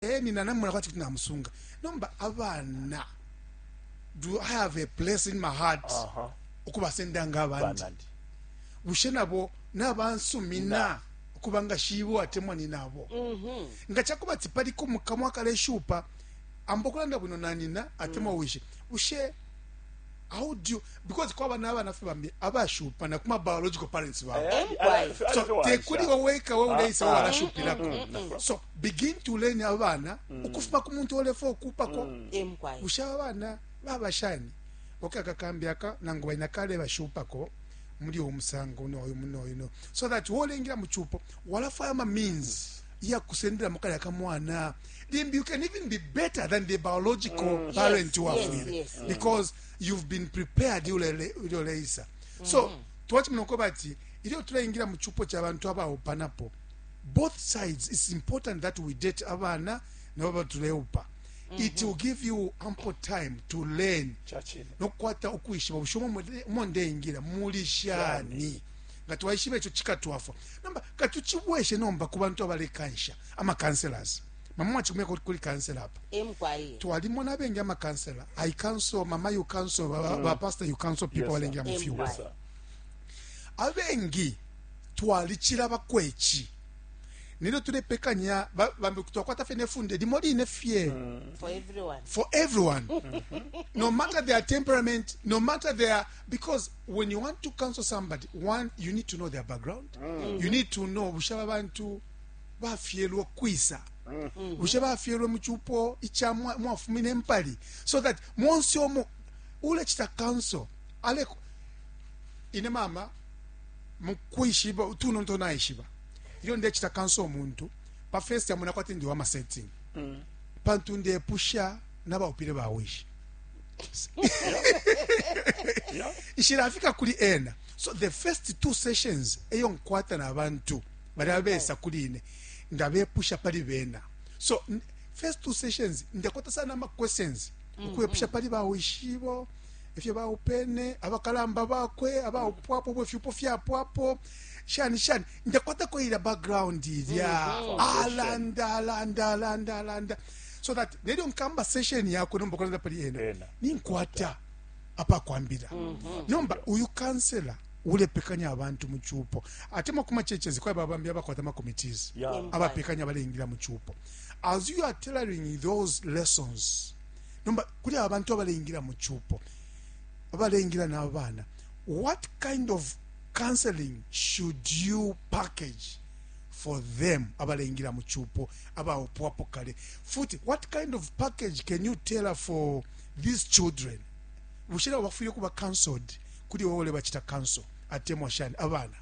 eh nina namona kwathi kuti namusunga nomba abana do i have a place in my heart uh -huh. ukubasenda nga abandi bushe nabo nabansumina ukuba nga shibo atemwa ni nabo mm -hmm. nga chakuba tipali ko mukamwa kale shupa ambokulanda bwino nanina atemwa mm. wishe bushe How do you, because kwaba nabana fye bambi abashupa na kuma biological parents babo eh, eh, so tekuli waweka wewe uleisa ah, ah. walashupilako mm, mm, mm. so begin to learn abana ukufuma ku muntu olefa okupako busha abana babashani okay akakambi aka nangu baina kale bashupako muli omusango noyo munoyo no so that wolengira mu chupo walafaya ma means ya kusendelamo kalya kamwana limbi you can even be better than the biological mm, parent yes, wafwile yes, yes, because mm. you've been prepared ilyo leisa mm. so mm-hmm. twachimina uko bati ilyo tulaingira mu chupo cha bantu abaupanapo both sides it's important that we date abana nabo batuleupa Mm -hmm. it will give you ample time to learn nokukwata ukwishiba bushomo umo ndeingira muli shani nga twaishiba ico cikatwafwa nomba katucibweshe nomba ku bantu abalekansha amakanselas mama mwacikumyako kuli kansela apa twalimona abengi amakansela i council mama you council mm. bapasta you council people balengela mu fyuwa abengi twalicila bakwechi nilyo tulepekanya bambi twakwata fye nefunde limo line fye mm. for everyone no matter their temperament no matter their because when you want to counsel somebody one you need to know their background mm. you need to know bushe aba bantu bafyelwe kwisa mm-hmm. bushe bafyelwe mu cupo ica mwafumine empali so that monse omo ulecita counsel ale ine mama mu kwishiba utuno nto naishiba ilyo ndecita counsel omuntu pa first yamona kwati ndi wa masetting mm. pantu ndepusha n'abaupile bawishi nshilafika kuli ena so the first two sessions eyo nkwata na bantu bali abesa kuli ine ndabepusha pali bena so first two sessions ndakwata sana ama questions mm-hmm. ukwepusha pali bawishibo ifyo baupene abakalamba bakwe abaupwapo bwe fyupo fyapwapo shani shani ndakwata ko ila background ilya mm-hmm. alanda alanda alanda alanda so that nelyo nkamba session yakwe nomba kulanda pali ena Ena. ninkwata apakwambira nomba uyu kansela ulepekanya abantu mu cupo ate makumachechezi kwaba bambi abakwata makomitees Yeah. Em- abapekanya baleingira mu cupo as you are tailoring those lessons nomba kuli abantu abaleingira mu cupo abaleingira n'abaana what kind of counseling should you package for them abaleingila mu chupo abaupwapo kale futi what kind of package can you tell for these children bushe nabo bafwile kuba cancelled kuli wowe ulebachita cancel atemwa shani abana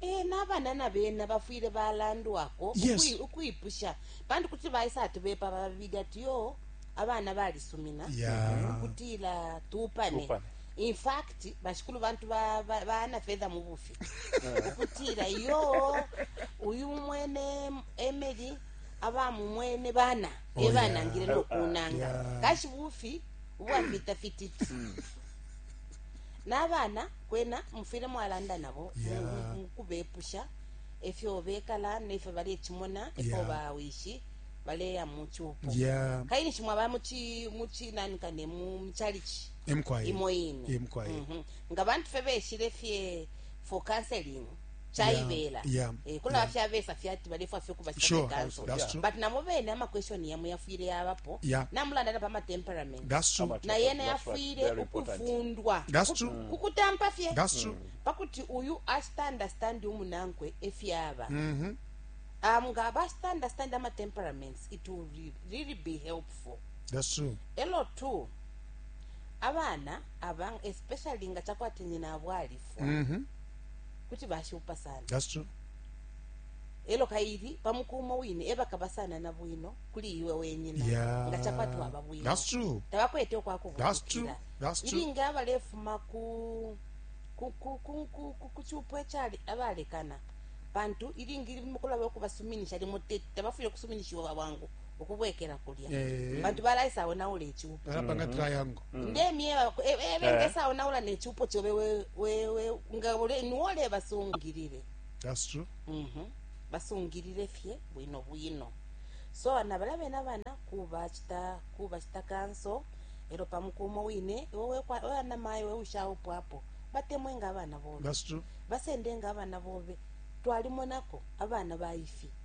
e n'abana na bena bafwile balandwako yes. ukwipusha pantu kuti baisa ati bepa babili ati yo abana balisumina yeah. ukutila tupane, tupane. In fact, bashikulu bantu ba, ba, ba Anna Fedha mubufi ukutila yo uyu mwene Emily abamumwene bana Oh, yeah. ebanangile Oh, nokunanga yeah. kashi bufi ubwapita fititi Hmm. n'abana kwena mufwile mwalanda nabo Yeah. mu- mu- mukubepusha efyo bekala nefyo balecimona efyo Yeah. bawishi baleya mu cupo yeah kaili nshimwa ba muchi muchi nani kane mu muchalichi imo ine mm -hmm. nga bantu fe beshile fye for counseling chaibela yeah, yeah, eh, kuna yeah. fya besa fyati balefwa fyo kuba sure, kanso yeah. but namo bene ama question yamu yafwile yabapo yeah. namulanda na pama temperament that's true na yena yafwile ukufundwa that's true mm. kukutampa fye that's true mm. pakuti uyu asta understand umunankwe efyaba mm -hmm. um nga basta understand ama temperaments it will really be helpful that's true elo too abana aba especially nga chakwati nyina abo alifwa mm -hmm. kuti bashupa sana That's true. elo kaili pamukumo wine ebakaba sana na bwino kuli iwe wenyina yeah. nga chakwati waba bwino That's true. tabakwete okwakubukira ilinga abalefuma ku kuchupo echali abalekana pantu ilingi mukulaba okubasuminisha limo tete tabafwile kusuminishiwa bwangu ukubwekela kulya Eh. pantu balaisaonaula icupo balapanga Mhm. triangle Mm. ndemyeba e- e- Eh. bengesaonaula necupo cobe we- we- we- nga ule- niwole basungilile that's true Mhm. basungilile fye bwino bwino so ana bala bena bana kubacita kubacita kanso elo pamukumo wine iwe wana mayi we ushaupwapo batemwe nga abana bobe that's true basende nga abana bobe twalimonako abana baifi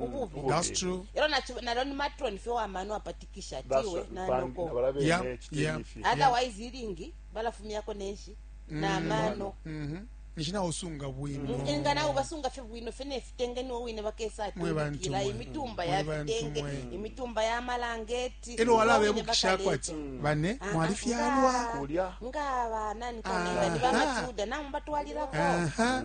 ububi That's true. ero nachi- naro ni matron fye wamano apatikisha tiwe Baswa- na bambi noko nabala bene Yeah, ekiteni yeah. ifi. otherwise iringi balafumyako neshi namano Mhm. nishina usunga bwino nga nawe basunga fye bwino fye nefitenge niwo wine bakesa Mwe bantu atundikira mwe. imitumba Mwe ya bantu fitenge mwe. imitumba ya malangeti ero wala niwo wine bebukishako bakaleta. ati bane Ah, mwali ah, fyalwa nga- Kulya. nga banani kanenga ni Aha. bamachuda namwe batwalirako aha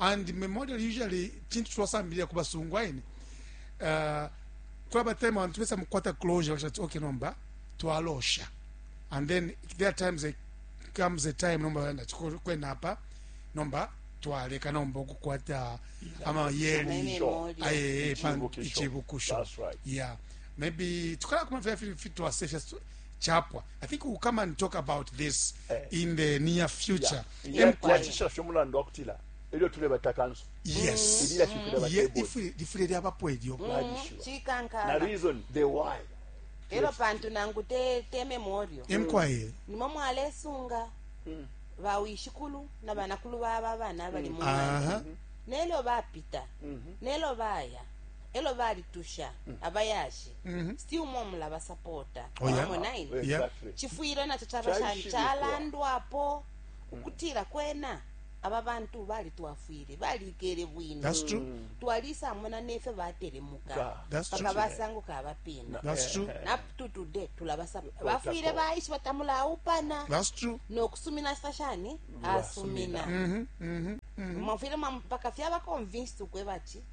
and memorial usually chintu twasambilira ku basungu aine uh, twaba time abantu besa mukwata closure bashati okay nomba twalosha and then there are times there comes a time nomba yanda kwena apa nomba twaleka nomba okukwata amayeri aye ichibukusho yeah maybe tukala kuma vya fitwa safest chapwa i think we'll come and talk about this eh. in the near future yeah. imkwacishisha umulandu wa kutila elyo tulebata kanso yes lifwile lyabapo elyo na reason the why elo pantu nangu te, te memorial imkwaye nimwe mwalesunga mm. bawishikulu na banakulu baba abana abali mm. mu nelyo bapita mm-hmm. nelyo baya elo balitusha abayashi still more mulaba supporta Oh, yeah. Wamona Yeah. ine? Exactly. chifwile nacho chaba shani Chaishibikwa. chalandwapo ukutila kwena aba bantu balitwafwile balikele bwino That's true. twalisamona nefyo batelemuka Ka. That's paka true. basanguka abapina That's true. up to today tulabasa bafwile baishi batamulaupana That's true. nokusumina sa shani asumina mwafwile mwa- mpaka fyaba convinced ukweba ati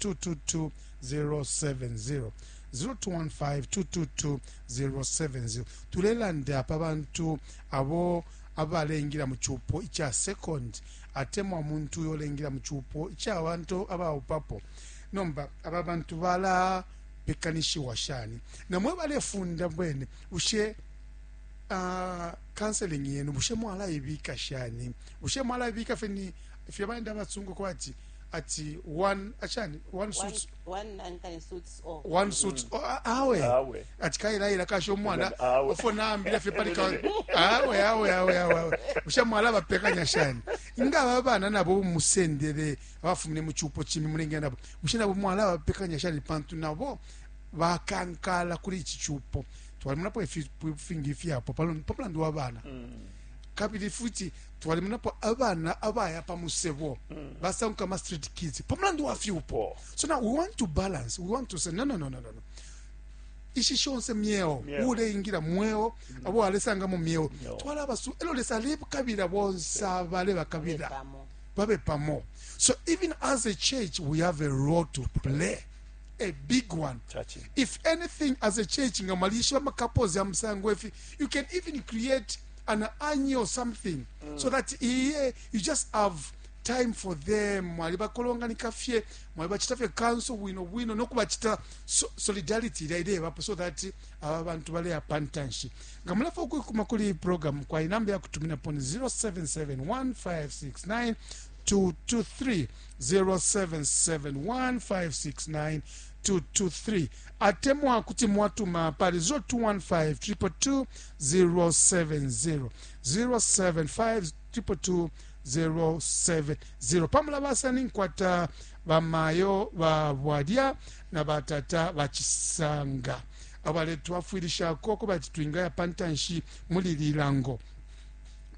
0215222-070 0215222-070 tulelanda pa bantu abo abaleingila mu cupo ica second atemwa umuntu uyo uleingila mu cupo ica abantu abaupapo nomba aba bantu bala bekanishiwa shani namwe balefunda bwene bushe uh, counseling yenu bushe mwalaibika shani bushe mwalaibika feni fye baenda batsungu kwati ati one achani one suits one suits mm. awe awe ati kaira ira kasho mwana ofo nambira fe pali kawe awe awe awe awe usha mwala bapekanya shani inga babana nabo musendere abafumine mu chupo chimi mulenge nabo usha nabo mwala bapekanya shani pantu nabo bakankala kuri iki chupo twali munapo ifi fingi ifi apo palo pamulandu wabana mm. kabili futi twalimonapo abana abaya pa musebo basanguka ama street kids pa mulandu wa fyupo so now we want to balance we want to say no no no no no no. ishi shonse myeo Myeo. uleingila mweo abo alesanga mu myeo Myeo. twala abasu elo lesa alebakabila bonse abale bakabila Pamo. babe pamo so even as a church we have a role to play a big one Chachi. if anything as a church nga mwalishiba ama couples ya musango efi you can even create an anyi or something mm. so that iye you just have time for them mwalibakolonganika fye mwalibacita fye kanso bwino bwino nokubacita so, solidarity ilya ilebapo so that aba bantu baleya pantanshi nga mulafa ukwikuma kuli iyi program kwa inamba ya kutuminapo ni 0771569223 0771569223 223 atemwa kuti mwatuma pali 0215 222 070 075222070 pamulabasa ninkwata bamayo ba bwalya na batata bachisanga abaletwafwilishako kubati twingaya pantanshi muli lilango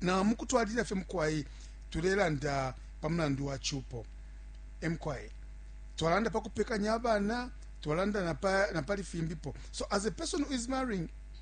na mukutwalilila fye mukwai tulelanda pa mulandu wa chupo emkwai twalanda pa kupekanya abana twalanda na pali fimbipo so as a person who is marrying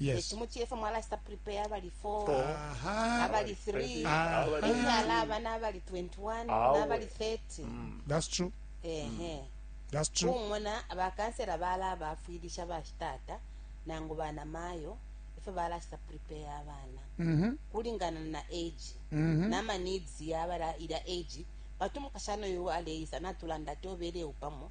Yes. tumuchefe mwalasta prepare abali 4 Aha. abali 3 Ah. enyala abana abali 21 Awe. nabali 30 That's true. ehe That's true. kumona bakansera bala abafwilisha bashitata nangu bana mayo ifyo balasta prepare abana Mhm. kulingana na age Mhm. nama needs yabala ila age bati umukashana oyo aleisa natulanda ati obeleu pamo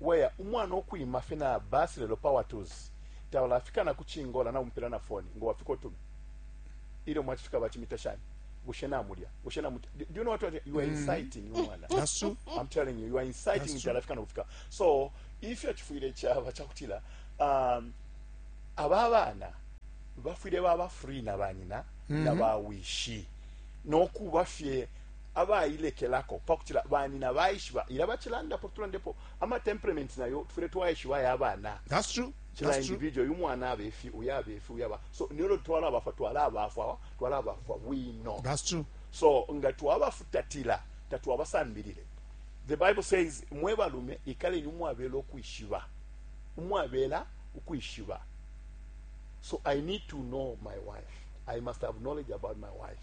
Weya umwana ukwima fye na bus lelo power tools tabalafika na ku chingola namupela na phone ngo wafika utume ilyo mwachifika bachimita shani bushe namulya bushe namu do you know what, what you are mm. inciting mm. umwana that's true i'm telling you you are inciting nti alafika nokufika so ifyo chifwile chaba chakutila um aba bana bafwile baba free na banyina mm -hmm. na bawishi nokuba fye abailekelako pakutila banina baishiba ila bachilandapo tulandepo ama temperaments nayo tufwile twaishiba ya bana that's true kila individual yu mwana abefi uya abefi uya ba so nilo twala bafwa twala bafwa twala bafwa bwino that's true so nga twabafutatila tatwabasambilile the bible says mwe balume ikaleni umwabela ukwishiba umwabela ukwishiba so i need to know my wife i must have knowledge about my wife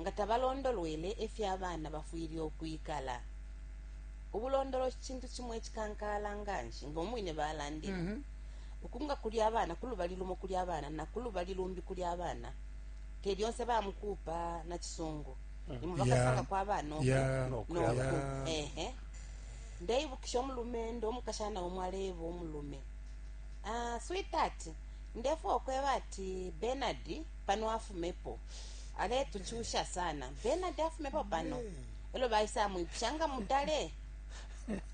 nga tabalondolwele ifyo abana bafwile ukwikala. Ubulondoloshi cintu cimo icikankala nganshi, nga umwine balandile. Mhm. Uku nga kuli abana kulubali lumo kuli abana na kulubali lumbi kuli abana, te lyonse ba mukupa na cisungu. Mhm. Imo bakasanga kwa abana uku no ku. Ehe. Ndeibukisha umulumendo umukashana umo aleeba umulume, ah, sweetheart, ndefwa ukweba ati Bernard pano afumepo aletuchusha sana benard afumepo pano elo baisa amwipusha nga mutale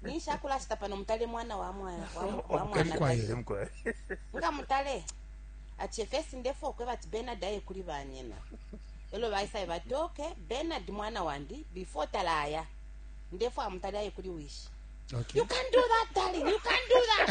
ninshi akulashita pano mutale mwana wa mwana wa- wa Omukali mwana kwa Yesu. Omukali. nga mutale ati efesi ndefu okweba ati benard aye kuli banyina elo baisaye bati oke benard mwana wandi before talaya ndefu amutale aye kuli wishi Okay. you can do that darling you can do that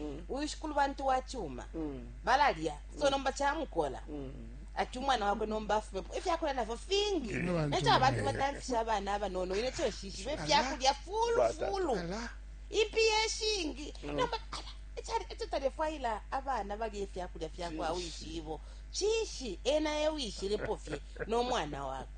mm. uyu shikulu bantu wa chuma mm. balalya so mm. nomba chamukola mm. ati umwana wakwe nomba afumepo ifyakulya navyo fingi necho abantu batamfisha abana abanono ine cho shishibe ifyakulya fulu fulu ipi yeshingi mm. nomba ala echo talefwaila abana balya ifyakulya fyakwa wishibo chishi ena ewishilipofye nomwana wakwe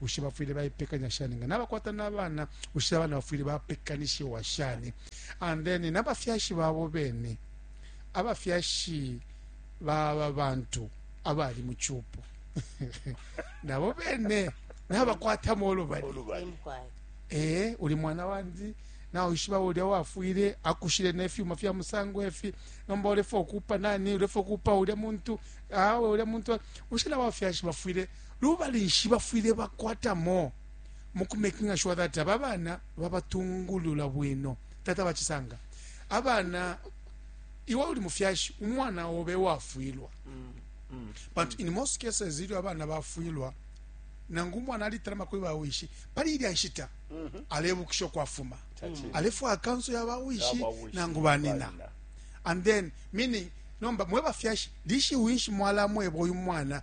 Bushe bafwile baipekanya shani nga nabakwata na bana? Bushe abana bafwile bapekanishiwa shani? And then na bafyashi babo bene, abafyashi ba aba bantu abali mu cupo nabo bene nabakwatamo ulubali. Ulubali. Imkwai. ee uli mwana wandi nawishiba ulya wafwile akushile nefyuma fya musango efi nomba ulefa okupa nani ulefa okupa ulya muntu awe ulya muntu ushila wafyashi bafwile Lubali nshi bafwile bakwatamo mu ku makinga shuwa that aba bana babatungulula bwino? Tata ba Chisanga, abana iwe uli mufyashi umwana obe wafwilwa mm, mm, but mm. in most cases ilyo abana bafwilwa nangu umwana alitalama kuli bawishi pali ilya nshita mm -hmm. alebukisha kwafuma mm -hmm. alefwa akanso ya bawishi nangu banina and then meaning nomba mwe bafyashi lishiwinshi mwalamweba uyu mwana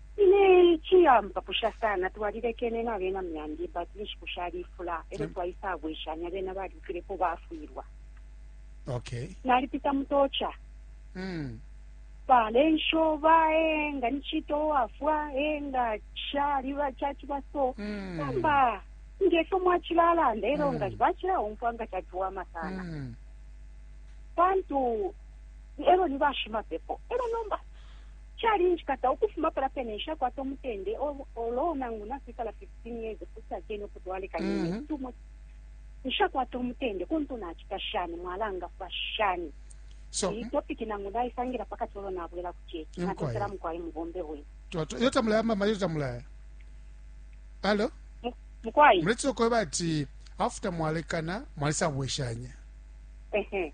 Ine ici ampapusha sana, twalilekene nabena myandi but inshiku shalifula elyo mm. twaisabweshanya bena balyukilepo bafwilwa okay. nalipita mutocha mm. balensho bae nga nichito wafwa e nga chali bachachiba so mm. kamba ngefyo mwachilalanda elo mm. nga bachilaumfwa nga chachiwama sana mm. pantu elo ni bashimapepo elo nomba Calinjikata ukufuma palya pene, nshakwata umutende, although nangu nakwikala 15 years ukucila 10 uku twalekanya, mm -hmm. too much nshakwata umutende kuntu nacita shani mwalangafwa shani so iyi topic nangu ndaisangila pakati olo nabwela ku chechi natotela mukwai mubombe wenu toto iyo tamulaya mama iyo tamulaya alo mukwai muletse okweba ati after mwalekana mwalisabweshanya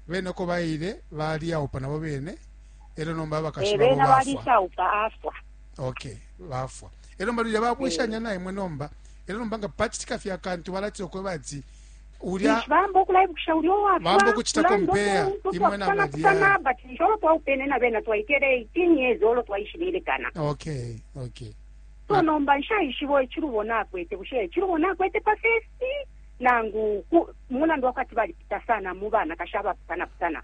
bene oko baile baliyaupa nabo bene elyo nomba abakashi babo bafwa balisauka afwa okay bafwa elyo nomba lulya babweshanya eh. naimwe nomba elyo nomba nga pacitika fye akantu balatira okweba ati ulya bamba okulaibukisha ulya owabamba okucitako mpeya imwe nabadia but nisho olo twaupene na bena twaikele 18 years olo twaishililekana okay okay so nomba nshaishibo echilubo nakwete bushe echilubo nakwete pa festi nangu mulandu wakati balipita sana mu banakashi abapusana pusana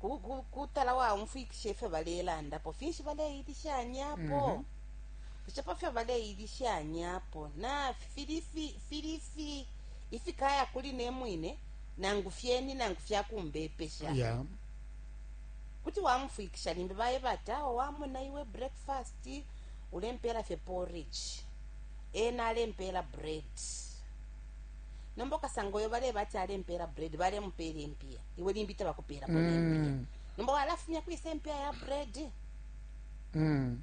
ku- ku- kutala waumfwikisha ifyo balelandapo finshi baleilishanyapo Mhm. bushe pa fyo baleilishanyapo na fili fi- fili fi- ifikaya kuli ne mwine nangu fyeni nangu fyakumbepesha ya kuti wamufwikisha limbi baye bati awo wamona iwe breakfast ulempeela fye porridge ena alempeela bread nomba ukasanga uyo baleba ati alempeela bread balemupeela impiya iwe limbi tabakupeelapo mm. nempiya nomba walafumya kwisa impiya ya bread mm.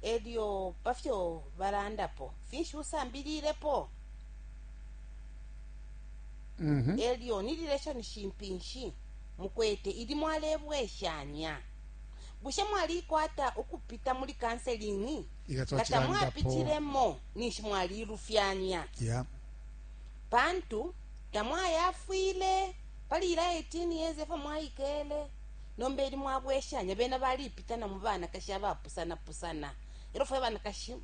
elyo pafyo balandapo finshi usambililepo mm -hmm. elyo ni relationship nshi mukwete ili mwalebweshanya bushe mwalikwata ukupita muli kanselingi nga tamwapitiremo ninshi mwalilufyanya yeah. pantu tamwayafwile pali ila 18 years efo mwaikele nomba eli mwabweshanya bena balipita na mu banakashi abapusanapusana elo fwe banakashi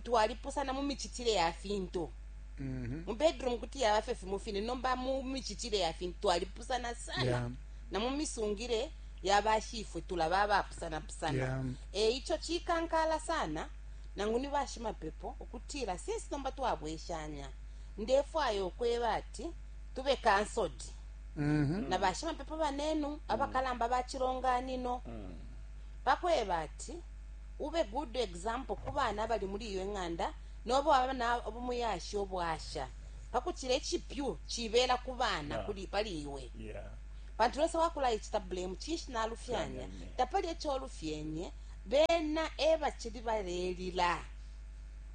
twalipusana mu micitile ya fintu mm -hmm. mu bedroom kuti yaba fye fimo fine nomba mu micitile ya fintu twalipusana sana yeah. na mu misungile yabashifwe tulaba abapusanapusana yeah. e ico cikankala sana nangu ni bashimapepo ukutila, Since nomba twabweshanya, ndefwaya ukweba ati tube cancelled na bashimapepo banenu, abakalamba ba cilonganino, pakweba ati ube good example ku bana abali muli iyo ing'anda nobe waba na umuyashi ubwasha, pakucila icipyu cibela ku bana Yeah. kuli pali iwe. Yeah. Pantu Lesa wakulaicita blame, cinshi nalufyanya? Nalufyanya, yeah. Tapali eco olufyenye. Bena e bacili balelila.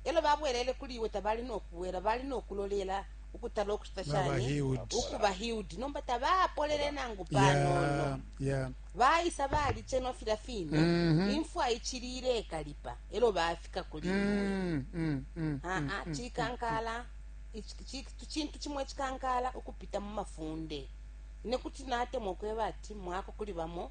Elo babwelele kuli iwe, tabali no kubwela, bali no kulolela ukutala ukucita shani? Ukuba healed. Nomba tabapolele nangu panono. Baisa balicenwa filya fine. Mm-hmm. Imfwa icili ilekalipa. Elo bafika kuli mm-hmm. iwe. Mm-hmm. Ah, ah, Chikankala. Chintu chimwe chikankala ukupita mu mafunde. Ine kuti natemwa ukweba ati mwako kuli bamo.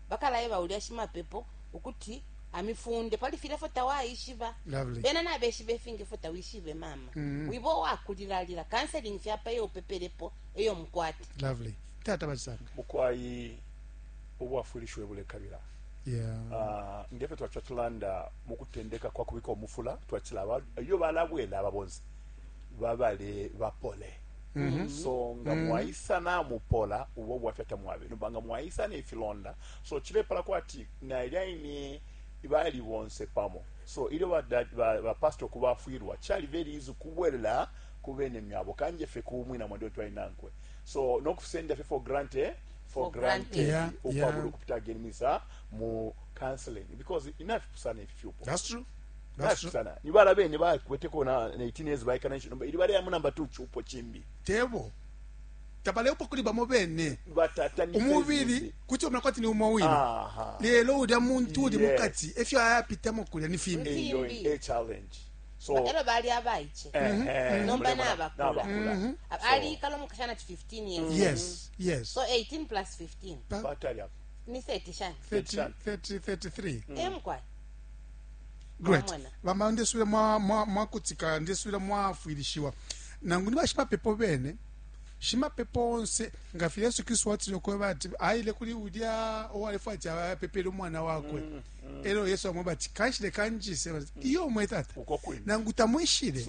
Bakalaeba ulya shimapepo ukuti amifunde pali filya ifyo tawaishiba. Lovely. Bena nabeshiba ifingi ifyo tawishibe mama. Mm. Wiba uwakulilalila. Counseling fye apa iyo upepelepo eyo mukwata. Lovely. Tata Basanga. Bukwai ubwafwilisho ebulekabila. Yeah. Uh, ngefyo twacha tulanda mu kutendeka kwa kubika omufula twachila iyo balabwela aba bonse babale bapole. Mm-hmm. so nga mm-hmm. mwaisa namupola ubo bwafya tamwabe nomba nga mwaisa nefilonda so chilepala kwati nailya ine bali bonse pamo so ilyo bapasita ba, ba okubafwirwa chali very easy kubwelela kubene myabo kanje fe kumwina mwandi twali nankwe so nokusenda fe for granted eh? for, for granted, granted. Yeah, ukwabula yeah. ukupita again misa mu counseling because inafipusana ifyupo that's true nasusana ni bala bene bakweteko na 18 years baikana nshi nomba ili baleya mu namba 2 chupo chimbi tebo tabalepo kuli bamo bene umubili kuti omera kwati ni umo wine lelo ulya muntu uli mukati efyo ayapitamo kulya ni fimbi elo bali abaiche eh, mhm. eh, nomba nabakula mhm. aliikala omukashana ti 15 years yes yes so 18 plus 15 ni 30 shani 30 33 emkwai great bama ndesubila mwakutika mwa, mwa ndesubila mwafwilishiwa nangu ni bashimapepo bene shimapepo onse nga fye yesu kristu watile okweba ati ayile kuli ulya owalefu ati apepele umwana wakwe mm, mm. elo yesu amweba ati kanshile kanjise mm. iyo omwe tata nangu tamwishile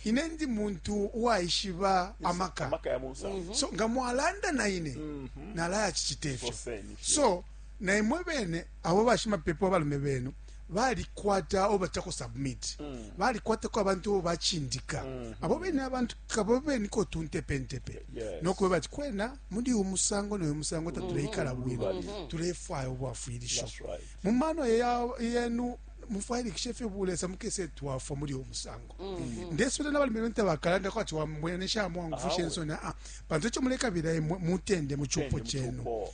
ine ndi muntu uwaishiba amaka mm-hmm. so nga mwalanda na ine mm-hmm. nalaya chichite ifyo so naimwe bene abo bashimapepo abalume benu balikwata abo batako submit mm. balikwatako abantu abo bachindika mm -hmm. abo bene abantu kabo bene ko tuntepentepe yes. nokuba bati kwena muli uyu musango noyu musango tatuleikala mm-hmm. bwino mm -hmm. tulefwaya obwafwilisho right. mu mano yenu mufwayilikisha efyo bulesa mukese twafwa muli uyu musango mm -hmm. ndesubila nabalimi bene tabakalanda kwati wambwene shamwangufusha ensoni aa ah, ah. pantu echo mulekabila mutende muchupo chenu mm -hmm.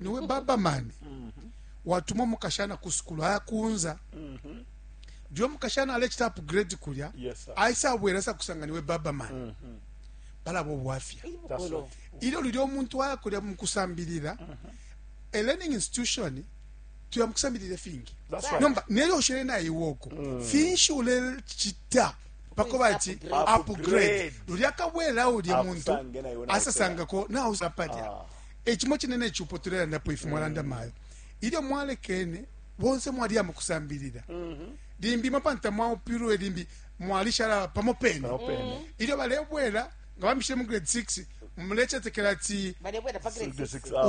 niwe babamani watuma umukashana ku sukulu ayakunza jo umukashana alecita upgrade kulya Yes, sir. aisabwera asa kusanga niwe babamani palaba obwafya That's right. ilyo lulya omuntu aya kulya mukusambilira a learning institution tuya mukusambilira fingi That's right. nomba nelyo ushele naiwe oko finshi ulecita pako bati Upgrade. upgrade lulya kabwera ulya muntu Akusange naiwe nawe asasangako nausapalya E cimo cine ne cupo tulelandapo ifi mwalanda mm. mayo. Ilyo mwalekene bonse mwaliya mu kusambilila. Mhm. Limbi mapanta mwaupilwe limbi mwalishala pamo pene. Mhm. Ilyo balebwela nga bamishile mu grade 6 mulechetekela ati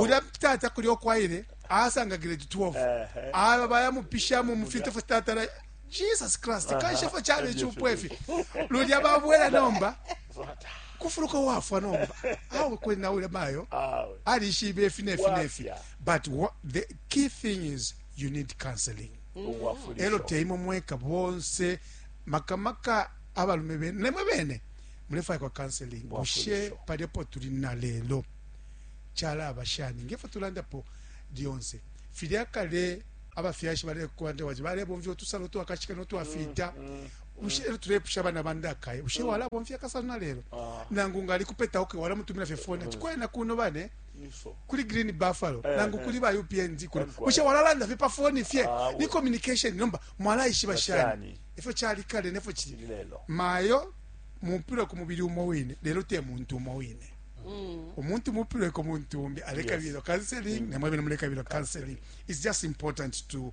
ulya tata kuli okwaile asanga grade 12 aba bayamupishamo mu fintu fo tatala jesus christ kanshefo chale chupo efi lulya babwela nomba kufuluka wafwa nomba awe kwena ule mayo alishibe ifi nefi nefi but what, the key thing is you need counseling elo teimo mweka bonse makamaka abalume bene nemwe bene mulefaya kwa counseling bushe paliapo tuli na lelo chalaba shani ngefo tulandapo lyonse filya kale abafyashi balekukwanda wati balebomvya utusalo twakashika notwafita mm, mm. bushe lelo tulepusha abana ba ndakai bushe walabomfya kasano na lelo ah. nangu nga alikupeta oke walamutumila fye foni ati kwena kuno bane kuli green buffalo eh, nangu eh. kuli ba upnd kuno bushe walalanda fye pa foni fye ah, ni communication nomba mwalaishiba shani efyo cali kale nefyo cili mayo mupila ku mubili umo wine lelo te muntu umo wine mm. umuntu mupilweko muntu umbi alekabilo counseling mm. nemwebene mulekabilo counseling it's just important to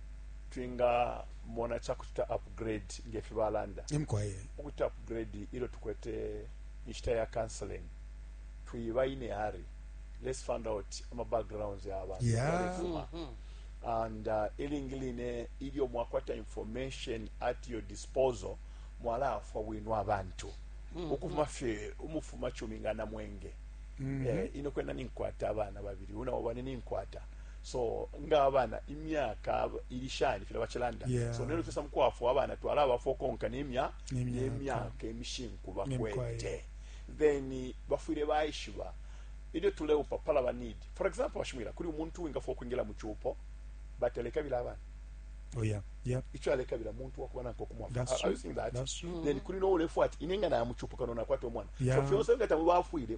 twingamona ca kucita upgrade nge fi balanda ukuti upgrade ilyo tukwete inshita ya counseling twiba ine hari let's find out ama backgrounds ya abantu yeah. Mm-hmm. and uh, ilingi line ilyo mwakwata information at your disposal mwalaafwa bwino abantu mm-hmm. ukufuma fye umufuma cumi nga namwenge mm-hmm. eh, ino kwena ninkwata abana babiri unawo bane ninkwata so nga abana imyaka ili shani fila bacilanda yeah. so nelo fisa mukwafwa abana twala abafwa konka nemya nemyaka emishinku bakwete then bafwile baishiba ilyo tuleupa pala ba need for example bashimwila kuli umuntu wingafwa okwingila mu cupo but alekabila abana Oh yeah, yeah. Icho aleka bila muntu wakuba nanko kumwafa. That's true. Are that? That's true. Then kuli no ulefu ati inenga na amuchupu kano na kwato mwana. Yeah. So fionse ngata mubafwile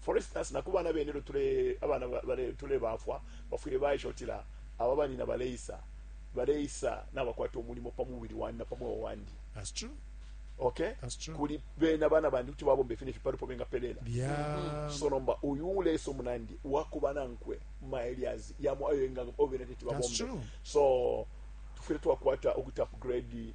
For instance, na ku bana bene ilyo tule abana ba- bale tulebafwa bafwile baisha utila aba banyina baleisa baleisa nabakwata umulimo pa mubili wandi na pa mweo wandi That's true. okay That's true. kuli bena bana bandi kuti babomba ifi nefi palipo bengapelela Yeah. so nomba uyu uleisa umunandi wakuba nankwe maelias yamo ayo enga obena teti That's babombe true. so tufwile twakwata ukuti upgrade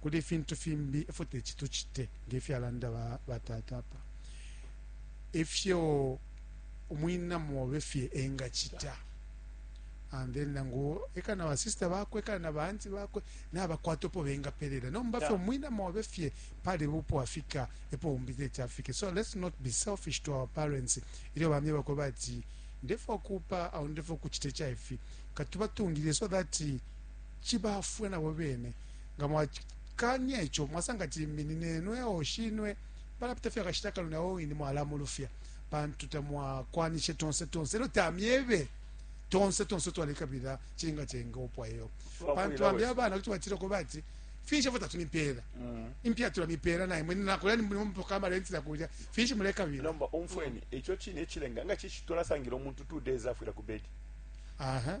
kuli ifintu fimbi ifyo teti tucite nge fyalanda ba, batata apa ifyo umwina mobe fye engacita and then nangu eka na basista bakwe eka na baanti bakwe nabakwata opo bengapelela nomba fye umwina mobe fye pali bupo afika epo umbi teti afike so let's not be selfish to our parents ilyo bamye bakwe bati ndefwa kupa au ndefwa kucita icaifi katubatungilile so that cibaafwe na bo bene. Nga mwakaanya ico, mwasanga ati limbi ni ne nweo, shinwe, palapita fye akashita kanono na o wine mwalamulufya pantu tamwakwanishe tonse tonse elyo tamyebe tonse tonse twalekabila chinga chenga opwa yo pantu bambi abana kuti batira ko bati finshi fota tumipera mm. impia tula mipera na imwe na kulani mu mpoka ma renti la kuja finshi muleka bira nomba umfweni mm. echo chine chilenga nga chichi tola sangiro muntu 2 days afira ku bed aha uh -huh.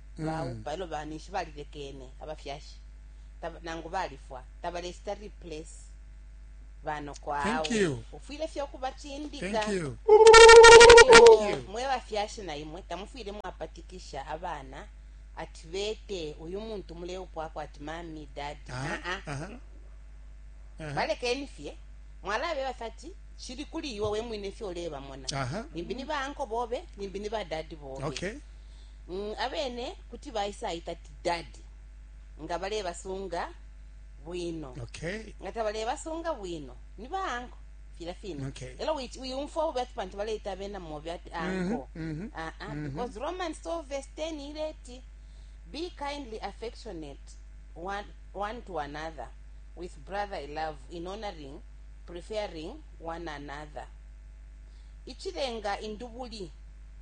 mm. baupa elo banishi balilekene abafyashi nangu balifwa tabalesita replace banoko awe ufwile fye ukubacindika mwe bafyashi na imwe tamufwile mwapatikisha abana ati bete uyu muntu muleupwako ati mami dadi aa ah, ah. ah, uh-huh. balekeni fye mwalabe basati shili kuli iwe we mwine fyo leba mona uh -huh. nimbi ni banko bobe nimbi ni badadi bobe okay. mm, abene kuti baisaita ti dadi nga balebasunga bwino okay. nga tabalebasunga bwino ni baanko fila fine okay. elo wiyumfwa ubi ati pantu baleita abena mobi ati anko mm -hmm, mm -hmm, uh -uh, mm -hmm. because roman so verse 10 ileti be kindly affectionate one, one to another with brotherly love in honoring preferring one another ichilenga indubuli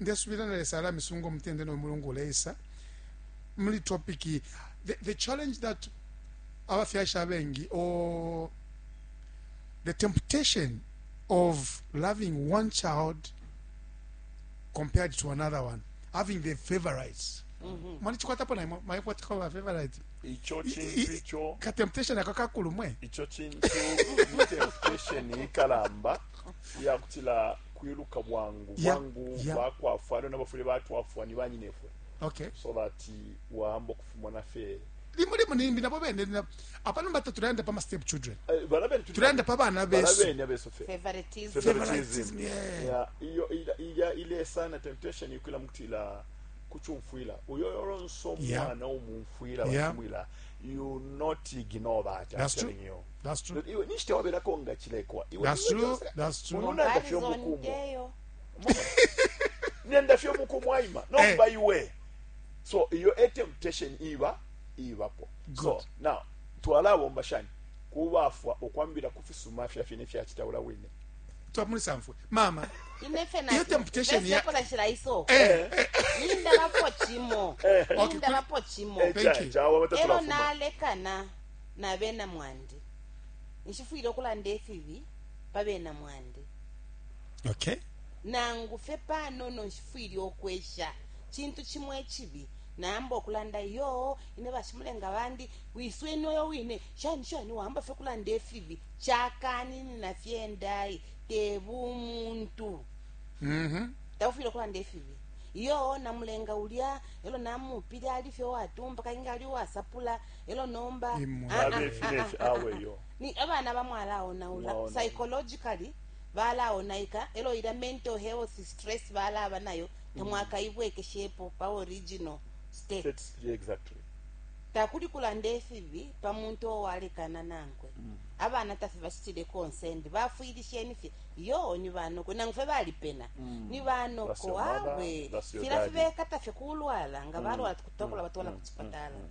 ndesubila na lesa alamisunga umutende no mulungu uleisa muli topic the, the challenge that abafyashi abengi or the temptation of loving one child compared to another one having the favorites mm-hmm. mwani chikwatapo na imwe mwayikwatako ba favorite icho chintu icho ka temptation aka kakulu mwe icho chintu temptation ikalamba yakutila kwiluka bwangu bwangu bakwafwa lona bafwile batwafwa ni banyinefwe okay. so that wahamba okufumona fe limo limo nimbi nabo bene apa nomba tatulaenda pa mastep children eh, tulaenda pa bana besuiveritism ilya ile sana temptation ikwila mukutila kuchumfwila uyo yolonso mwana umumfwila bamfwila you not ignore that i'm telling you iwe ninshi tewabelako nga chilekwa iweulunanda fye omukumo nenda fye omukumo aima eh. nomba iwe so iyo e temptation iba ibapo so now twalabomba shani kubafwa okwambira ku fisuma fya fine fyakitawula wine twamulisa mfwe mama iyo temptation ya iso eh, eh, eh. nindalapo chimo nindalapo chimo ero nalekana na bena mwandi. Nshifwile ukulanda ifibi pa bena mwandi. Okay. Nangu fye panono nshifwile ukwesha cintu cimo icibi. Nayamba ukulanda, Iyo, ine bashimulenga bandi, wisweni uyo wine, shani shani, wayamba fye ukulanda ifibi. Cakaninina fye ndai, te bumuntu. Taufwile ukulanda ifibi. Iyo, namulenga ulya, e lyo namuupile, ali fye uwatumpa, kabili nga ali uwasapula. elo nomba abana bamwalaonaula psychologically balaonaika elo ila mental health stress balaba nayo tamwakaibwekeshepo mm. pa original state exactly. takuli kulanda efibi pa muntu owalekana nankwe mm. abana tafe bacitile konsendi bafwilisheni fye yo ni banoko nangu fe balipena mm. ni banoko awe fila fibekata fye kulwala nga mm. balwala mm. tukutokola batwala mm. ku cipatala mm. mm.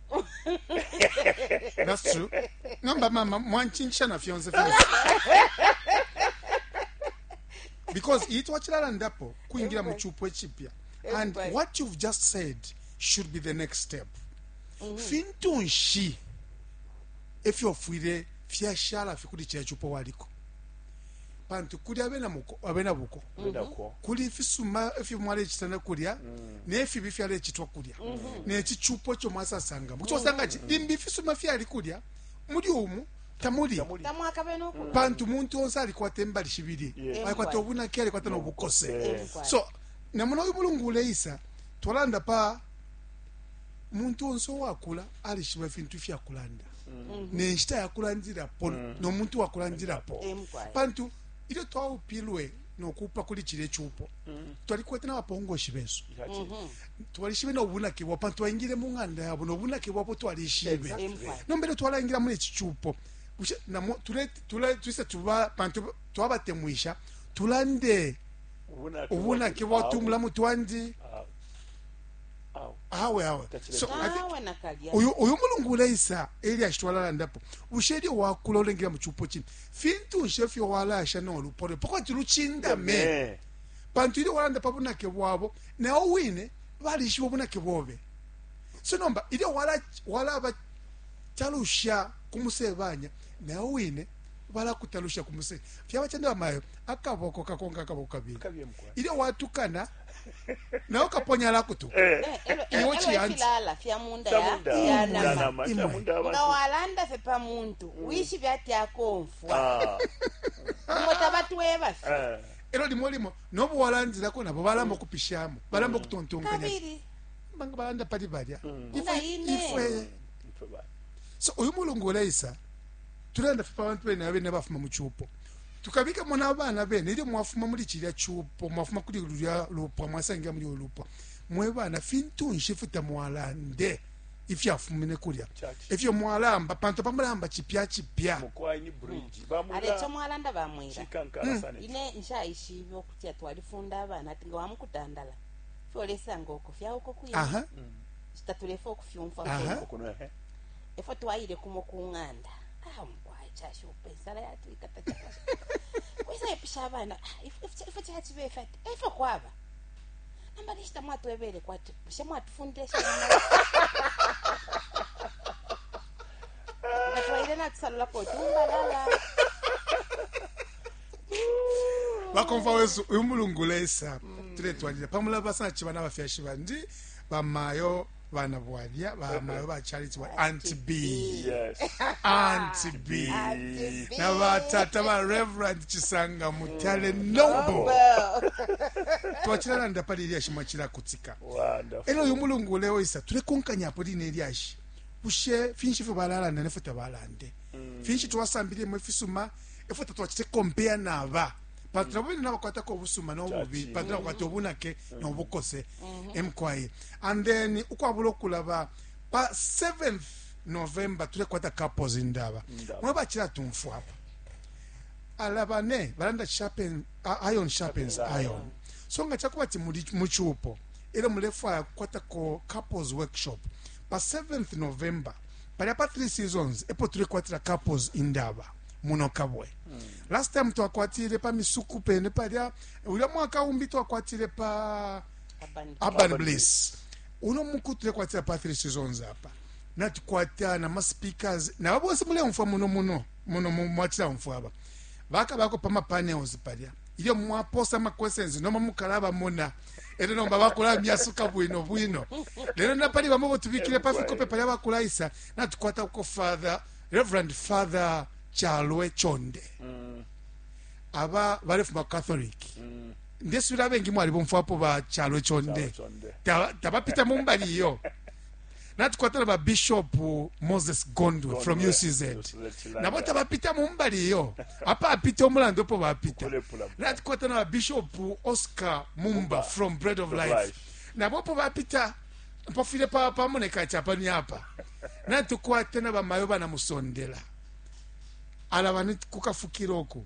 That's true. Nomba mama mwanchingisha na fyonse fyonse. Because iyi twachilalandapo kuingira mu chupo echipya. And Everybody. what you've just said should be the next step. Fintu nshi efyofwire fyashala fikuli chechupo waliko. pantu kuli abena muko abena buko kuli ifisuma ifyo mwalecitana kulya mm. nefibi fyalecitwa kulya mm-hmm. nechichupo icho mwasasanga mucho mm-hmm. sanga chi limbi ifisuma fyali kulya muli umu tamuli pantu muntu onse alikwata embali shibili alikwata obunake alikwata nobukose so namona uyu mulungu uleisa twalanda pa muntu onse owakula alishiba ifintu ifyakulanda mm-hmm. nenshita yakulandilapo mm. nomuntu wakulandilapo eh, pantu ilyo twaupilwe nokupa kuli chile chupo mm. twalikwete nabapongoshi besu mm-hmm. twalishibe nobunake bwabo pantu twaingile mu ng'anda yabo nobunake bwabo twalishibe nomba ilyo twalaingila muli ici chupo tulise tuba pantu twabatemwisha tulande ubunake bwatu mulamu twandi ah. awe awe so i think awe nakalya uyu uyu mulungu uleisa elyashi twalalandapo bushe elyo wakula ulengela mu cupo cine fintu nshe fyo walasha nolupo lwe pakwati lucindame Eh, pantu ilyo walanda pa bunake bwabo nawo wine balishiba ubunake bobe so nomba ilyo wala- walabatalusha ku musebanya nawo wine balakutalusha ku musebanya fyaba cende bamayo akaboko kakonka akaboko kabili kabye mukwa ilyo watukana nawe ukaponya la kutu eh. eh, eh, iwo chiyanzi nga walanda fe pa muntu mm. wishibe ati akomfwa ah. umo tabatweba fe eh. elo limo limo nobo walanzilako nabo balamba okupishamo mm. balamba mm. okutontonkanya banga balanda pali balya ifwe so uyu mulungu uleisa tulanda fe pa bantu bene abene bafuma mu chupo tukabikamo n'abana bene ilyo mwafuma muli cilya cupo mwafuma kuli lulya lupwa mwasangira muli uyo lupwa mwe bana fintu nshi ifyo tamwalande ifyafumine kulya efyo mwalamba pantu pamulamba cipya cipya aleco mwalanda bamwira hmm. ine nshaishibe okutya twalifunda abana ati nga wamukutandala fyolesanga oko fyauko kuya hmm. tatulefe okufyumfwa efo twayire kumo ku ng'anda ah, Ai, cashupa insala yatwikata cakashupa kwisa ipisha abana "Ah, ifwe- ifwe- ifwe caciba ife ati efyo kwaba namba nishita mwatwebele kwati bushe mwatufundile shana ngatwaile natusalulako tumbalala bakomfa wesu uyu mulungu lesa tuletwalira pamulaba sana chiba n'abafyashi bandi bamayo bana bwalya bamayo ba charity wa anti b yes anti b Auntie B. na batata ba reverend chisanga mutale nobo Well, twachilalanda pali ilyashi mwachilakutika wonderful elo uyu mulungu uleo isa tulekonkanyapo line ilyashi bushe finshi ifyo balalanda nefwe tabalande finshi twasambililemo ifisuma efwe tatwachite kompeya naba pantu nabo bene nabakwatako obusuma nobubi Chachi. pantu nabakwata obunake nobukose emkwaye and then ukwabula okulaba pa 7th november tulekwata couples indaba mwe bachila tumfwa apa alabane balanda sharpen uh, iron sharpens iron so nga chakuba ti muchupo elo mulefwaya kukwata ko couples workshop pa 7th november palya pa 3 seasons epo tulekwatila couples indaba muno kabwe mm. last time twakwatile pa misuku pene palya ulya mwaka umbi twakwatile pa urban bliss uno muku tulekwatira pathri seasons apa natukwata na maspeakers nabo bonse muleumfwa muno muno muno mu- mwatilaumfwa aba bakabako pamapanels palya ilyo mwaposa amaquestions nomba mukalabamona ero nomba bakulamyasuka bwino bwino lero napali bamo botubikire pafikope palya bakulaisa natukwata uko father reverend father chalwe chonde aba balefuma catholic ndesubila abengi mwalibomfwapo ba chalo chonde tabapita ta mumbali iyo natukwatana ba bishop moses gondwe Gondwe. from ucz nabo tabapita mumbali iyo apa apita omulando opo bapita natukwatana ba bishop oscar mumba, mumba from bread of life, life. nabo opo bapita pafwile pamoneka pa chapa ni apa natukwatana bamayo banamusondela ala bani kukafukira oku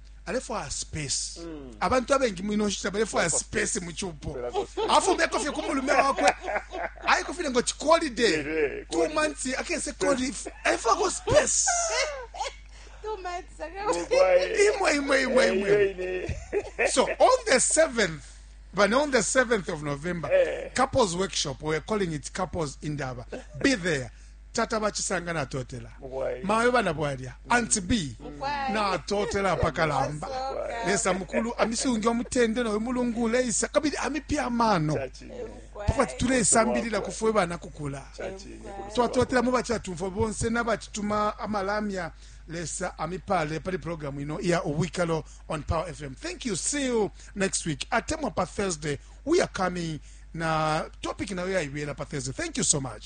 alefwaya space mm. abantu abengi mwino nshita balefwaya space mu cupo afumeko fye ku mulume wakwe ayiko file ngo cikolide two months akese koli alefwako space imwe imwe imwe imwe so on the seventh But on the 7th of November, hey. Eh. couples workshop, we're calling it couples in Daba. Be there. tata bachisanga natotela mayo bana bwalya anti b natotela apakalamba lesa mukulu amisungi omutende noyo mulungu uleisa kabili amipya amano pakwati tulesambilila kufwe bana kukula twatotela mu bachatumfo bonse nabachituma amalamya lesa amipale pali programu ino iya ubwikalo on power fm thank you see you next week atemwa pa thursday we are coming na topic nayo yaibela pa thursday thank you so much